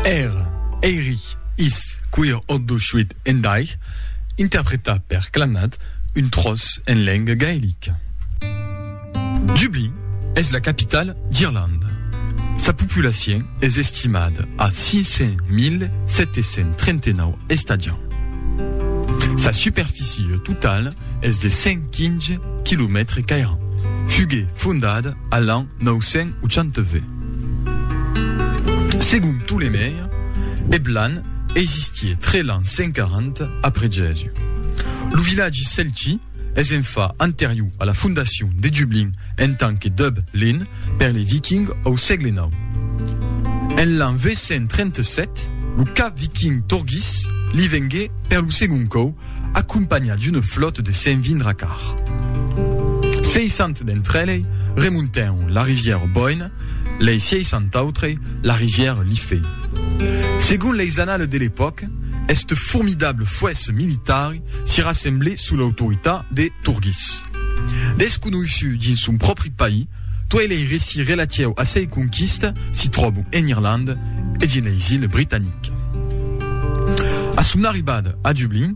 Èr, èiri, is, quir, oddo, shuit, endair, interpretat per Clannad, un tròç en lenga gaelica. Dublin es la capitala d'Irlanda. Sa populacion es estimada a 500.739 estadiants. Sa superficie totala es de 115 quilomètres qu'airàn. Fugué fondada a l'an 980. Segon Ptolemèi, eth lan existié 3 l'an 140 après Jèsus. Lo vilatgi celti es en fa anterior a la fondacion de Dublin en tant que Dub lin per les Vikings au sègle nau. En l'an 837, lo cap viking Thorgis li vengué per lo segon còu acompanhat d'una flòta de 120 racars. 60 d'entre elei remontèron la rivièra Boyne, lei 60 autrei la rivièra Liffey. Segon leis annales de l'epòca, este formidable fuèsse militari si rassemblè sous l'autoritat de Turgis. Desconoissut dins son pròpri país, Tuei lei reci relatieu a sei conquista si tròbon en Irlanda e dins leis Iles Britaniques. A son arribada a Dublin,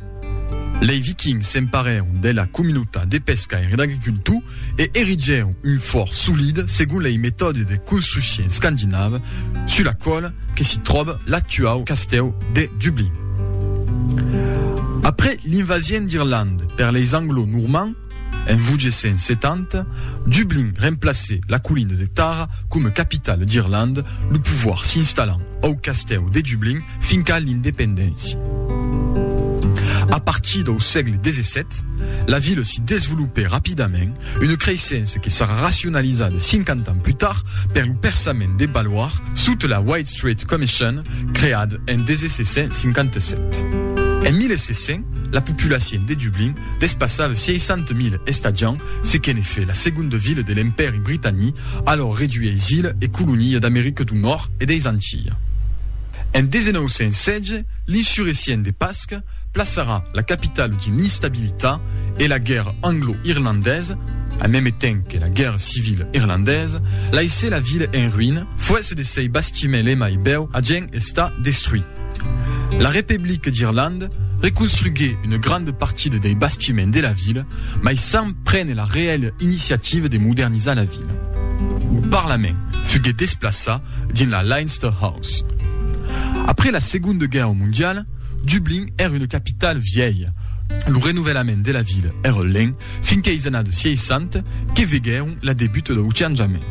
lei Vikings s'emparèron de la comunautat de pescaire e d'agricultor e erigèron un fòrt solid segon lei metòde de construccion scandinava sus la còla que si tròba l'actuau castèu de Dublin. Après l'invasion d'Irlanda per leis Anglo-Normands, En 870, Dublin remplacèt la colina de Tara coma capitala d'Irlanda, lo povoir s'installant au castèu de Dublin finca l'independéncia. A partir dau sègle xvii, la vila s'i desvolopèt rapidament, una creissença que sarà racionalizada 50 ans plus tard per lo perçament de Balwar sota la White Street Commission creada en 1657. En 1700, la populacion de Dublin Despassava 60.000 estadiants, se que'n fait la segonda vila de l'Empèri Britani, alòr reduit eis iles e colonia d'America du Nòrd e deis Antilles. En 1916, l'insurecient de Pasque plaçarà la capitala dins l'instabilitat e la guèrra anglo-irlandesa, en meme temps que la guèrra civila irlandesa, laissè la vila en ruïna, fuèsse de sei bastiments l'emai bèu a gen estar destruit. La Repeblica d'Irlanda, reconstruguèt una granda partida dei bastiments de la vila, mai sens prene la reèla iniciativa de modernizar la vila. Lo parlament fuguèt desplaçat dins la Leinster House. Après la Segonda Guèrra Mondiala, Dublin èra una capitala vièlha. Lo renovelament de la vila èra lent fins queis annadas 60 que veguèron la debuta dau changement.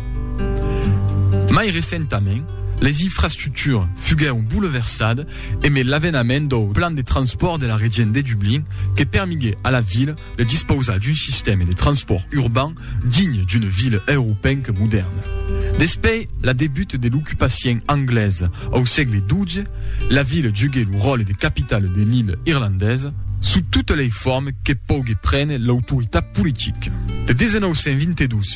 Mai recentament, leis infrastructuras fuguèron bouleversadas emé l'avenament dau plan de transpòrt de la Region de Dublin que permigué a la vila de dispausar d'un sistème de transpòrt urban digne d'una vila europenca modèrna. Despei la debut de l'ocupacien anglesa au sègle xii, la vila jugué lo ròle de capitala de l'illa irlandesa, sous totas lei formes que pogué prene l'autoritat politica. De 1922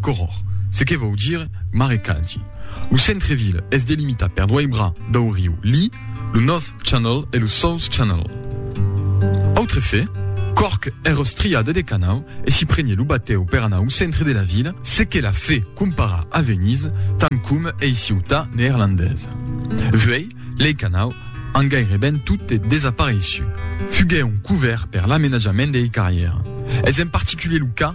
Goròr, se que vòu dire marecalgi. Lo centre-ville es delimitat per doai bras dau riu Lee, lo North Channel e lo South Channel. Autre fait, Cork es rostriada de canau e si prenie lo batèu per anar au centre de la vila, se que la fait comparar a Venise, tant com ei ciutat neerlandesa. Vuei, lei canau an gaireben totes desapareiçut. Fuguèron couvèrts per l'amenatjament dei carrièrs. Es en particulier lo cas.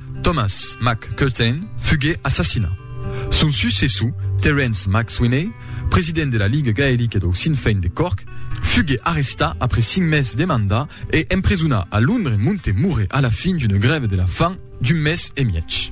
Thomas Mac Curtain fugué assassinat. Son successor, Terence Mac Swinney, president de la Ligue Gaelique dau Sinn Fein de Cork, fugué arrestat après cinc mes de mandat e empresonat a Londres monte morré a la fin d'una grève de la fam d'un mes e mièg.